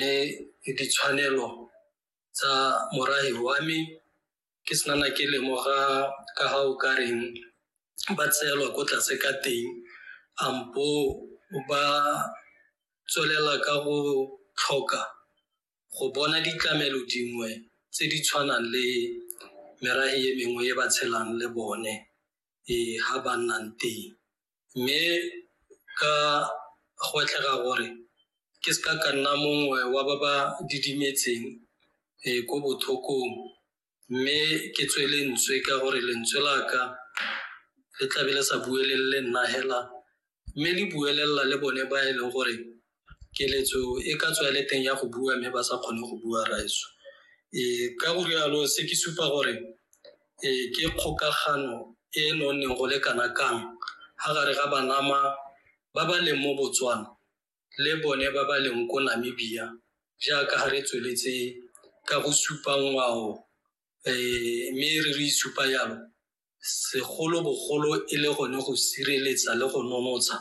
le ditshwanelo tsa morahi wa me ke senana ke lemoga ka ga o ka reng ba tseelwa ko tlase ka teng ampo ba tswelela ka go tlhoka go bona ditlamelo dingwe tse di tshwanang le merahi e mengwe e ba tshelang le bone e ha ba nnang teng mme ka gwetlhega gore ke se ka ka nna mongwe wa ba ba didimetseng um ko bothokong mme ke tswe lentswe ka gore lentswe la ka le tlabe le sa buelelele nna hela mme le buelelela le bone ba e leng gore keletso e ka tswa le teng ya go bua mme ba sa kgone go bua raetso um ka go rialo se ke supa gore um ke kgokagano e e nonneng go le kana kang ga gare ga banama ba ba leng mo botswana le bone ba ba leng ko namibia jaaka ga re tsweletse ka go supa ngwao um mme re re isupa yalo segolobogolo e le gone go sireletsa le go nonotsha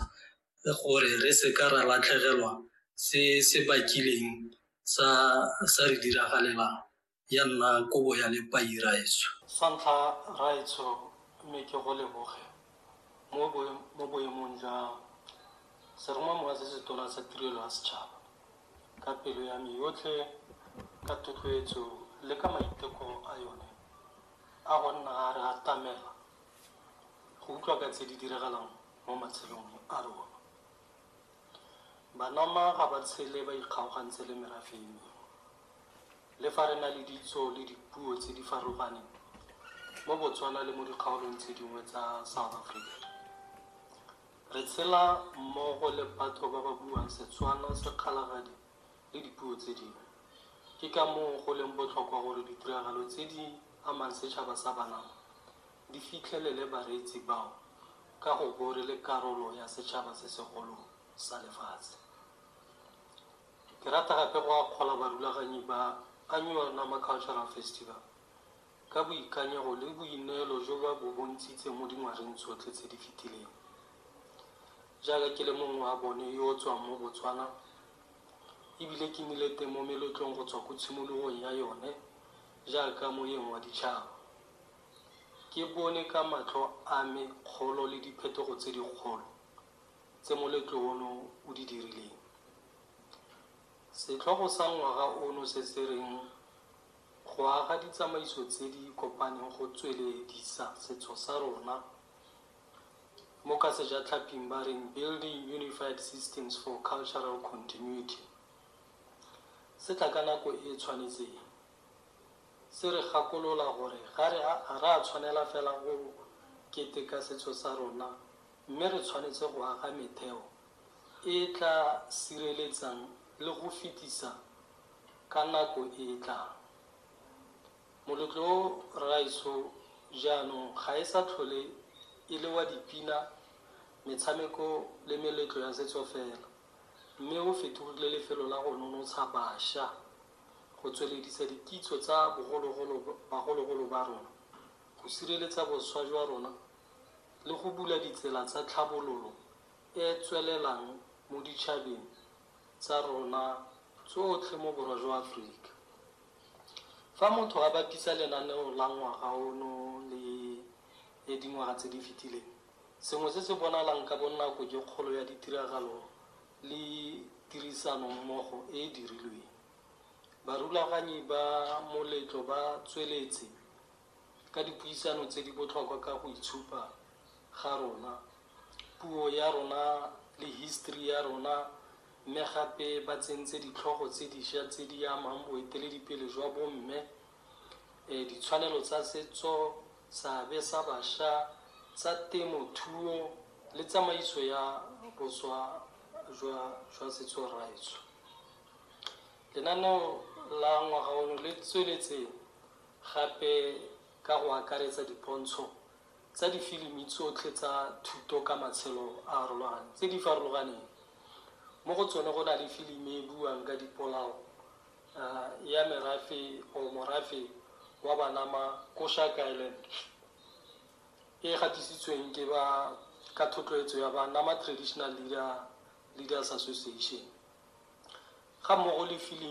gore re seka ra latlhegelwa se se bakileng sa sa re diragalelang ya nna kobo ya lepai raetsho. Sa ntlha raetsho mme ke go leboge mo mo boemong jwa seromamowa se se tona sa tirelo ya setšhaba ka pelo ya me yotlhe ka thotloetso le ka maiteko a yone A go nna a re atamela go utlwa ka tse di diragalang mo matshelong a rona. Banama ga ba tshele ba ikgaogantse le merafe e mengwe. Le fa re na le ditso le dipuo tse di farologaneng mo Botswana le mo dikgaolong tse dingwe tsa South Africa, re tshela mmogo le batho ba ba buang Setswana, Sekgalagadi, le dipuo tse dingwe. Ke ka moo go leng botlhokwa gore ditiragalo tse di amang setšhaba sa Banama di fitlhelele bareetsi bao ka go bo re le karolo ya setšhaba se segolo sa lefatshe. Ke rata gape go akgola barulaganyi ba Annual Nama Cultural Festival ka boikanyego le boineelo jo ba bo bontshitseng mo dingwageng tsotlhe tse di fetileng. Jaaka ke le mongwe wa bone yo o tswang mo Botswana e bile ke nnile teng mo meletlong go tswa ko tshimologong ya yone jaaka moeng wa ditšhaba, ke bone ka matlho a me kgolo le diphetogo tse dikgolo tse moletlo ono o di dirileng. Setlhogo sa ngwaga ono se se reng Go Aga Ditsamaiso Tse di Kopaneng Go Tsweledisa Setso sa Rona mo ka sejatlhaping ba reng Building Unified Systems for Cultural Continuity, se tla ka nako e e tshwanetseng, se re gakolola gore ga re a tshwanela fela go keteka setso sa rona mme re tshwanetse go aga metheo e e tla sireletsang le go fetisa ka nako e e tlang. Moletlo o Rragaetsho jaanong ga e sa tlhole e le wa dipina, metshameko le meletlo ya setso fela, mme o fetogile lefelo la go nonotsha basha, go tsweledisa dikitso tsa bagologolo ba rona, go sireletsa boswa jwa rona le go bula ditsela tsa tlhabololo e e tswelelang mo ditšhabeng tsa rona tsotlhe mo Borwa jwa Aforika. Fa motho a bapisa lenaneo la ngwaga ono le le dingwaga tse di fetileng, sengwe se se bonalang ka bonako ke kgolo ya ditiragalo le tirisanommogo e e dirilweng. Barulaganyi ba moletlo ba tsweletse ka dipuisano tse di botlhokwa ka go itshupa ga rona, puo ya rona le history ya rona Mme gape ba tsentse ditlhogo tse disha tse di amang boeteledipele jwa bomme, ditshwanelo tsa setso, seabe sa basha, tsa temo thuo le tsamaiso ya boswa jwa jwa setso raetsho. Lenaneo la ngwaga ono le tsweletse gape ka go akaretsa dipontsho, tsa difilimi tsotlhe tsa thuto ka matshelo a arologane tse di farologaneng. Mo go tsone go na le filimi e buang ka dipolao ya merafe or morafe wa Banama ko Shark Island e gatisitsweng ke ba ka thotloetso ya ba Nama Traditional Leader Leaders Association ga mmogo le filimi